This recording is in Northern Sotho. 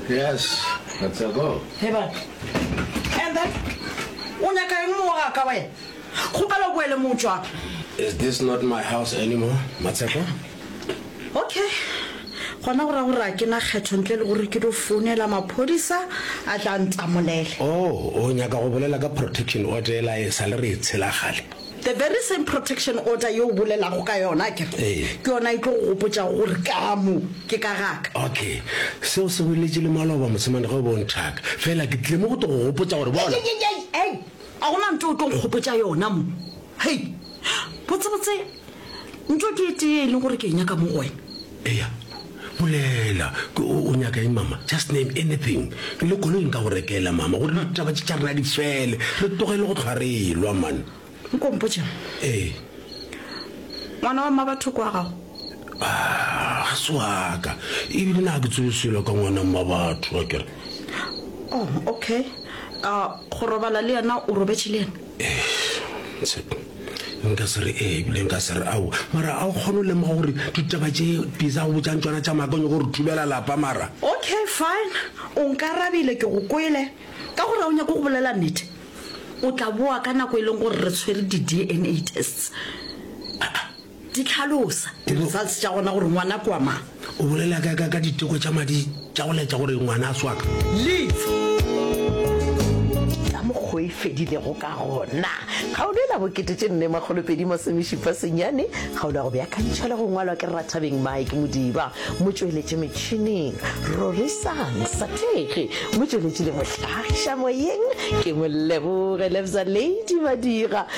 Yes, that's a go. Hey, ba. And then, o nyaka eng mo ga ka wena? Kgopela o boele mo tswa. Is this not my house anymore, Matshepo? Okay. Gona go ra gore a ke na kgetho ntle le gore ke do founela maphodisa a tla ntamolele. Oh, o nyaka go bolela ka protection order e la e sa le re e tshela gale. The very same protection order ye o bolelago ka yona akere, ke yona e tlo go gopotšago gore kamo ke ka ga ka. Okay, seo se boletše le maloba mosemane ge o be o nthaka. Fela ke tlile mo go tlo go gopotša gore bona. Hei, a gona nto o tlo nkgopotša yona mo. Hei, botsebotse nto ke e tee e leng gore ke e nyaka mo go wena. Eya. Bolela, O nyaka eng mama? Just name anything. Le koloi nka go rekela mama gore ditaba tše tša rena di fele. Re tlogele go hlwa re elwa man. Nko mpotša. Ee. Ngwana wa mmabatho ke wa gago? Ah, ga se waka. Ebile na ke tsebe selo ka ngwana mmabatho akere. Oh, okay. Ah, go robala le yena o robetše le yena? nka se re ee ebile nka se re ao mara a o kgone o lemoga gore ditaba tše pisa go botšang tsona tša maaka o nyako gore thubela lapa mara okay fine o nkarabile ke go kwele ka gore o nyako go bolela nete o tla boa ka nako e leng gore re tshwere di-dna tests Di hlalosa. Di-results tša gona gore ngwana ke wa mang. O bolela ka, ka, ka diteko tša madi tša go laetša gore ngwana a swaka. Leads. Ka mokgwa o e fedilego ka gona. Kgaolo e la bokete tše nne makgolo pedi masomešupa senyane. Kgaolo ya go beakantšhwa le go ngwalwa ke Rathabeng Mike Modiba. Motšweletši metšhineng, Rorisang Sathege. Motšweletši le mohlagiša moyeng ke Moleboge Lebza Lady Madira.